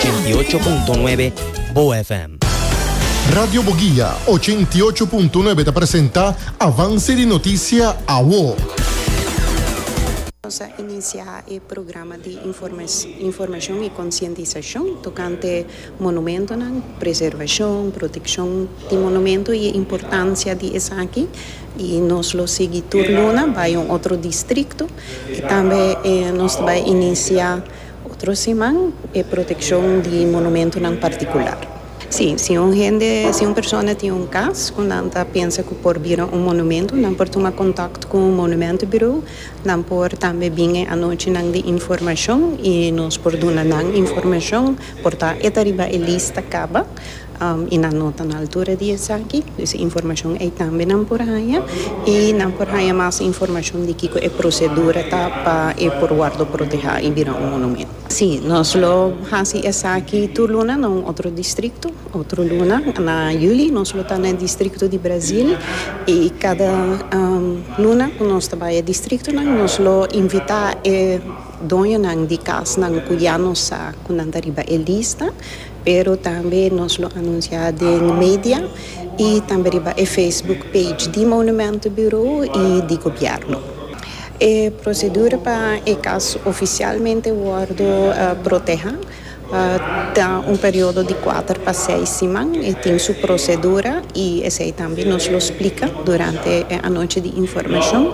88.9 Boa FM. Radio Boguia, ochenta i ocho punto nuebe ta presenta Avance di Noticia, Awo. Nos a inicia e programa di informacion y concientisacion tocante monumentonan, preservacion, proteccion di monumento y e importancia di esaki. Y nos lo sigui tur luna bay un otro distrito y tambe nos ta bay inicia. Otro siman e protekshon di monumentonan partikular. Sí, si un hende, si un persona tin un kas ku nan ta pensa ku por bira un monumento, nan por tuma kontakt ku un monumentenburo. Nan por tambe bin e anochinan di informashon i nos por duna nan informashon. Por ta e ta riba e lista kaba. y nan no ta na altura di esaki pues e informacion ey tambe nan por haya y nan por haya mas informacion di kico e procedura ta pa e por wordo proteha y bira un monumento. Si, nos lo haci esaki tur luna na un otro distrito, otro luna na juli nos lo ta na e distrito di Brazil y cada luna cu nos ta bay e distritonan nos lo invita e doñonan di casnan cu ya nos sa cu nan ta riba e lista, Pero tambe nos lo anuncia den media y tambe riba e Facebook page di Monumento Bureau y di Gobierno. E procedura pa e cas oficialmente wordo proteha ta un periodo di cuater pa seis siman. E tin su procedura y esey tambe nos lo splica durante e anochi di informacion.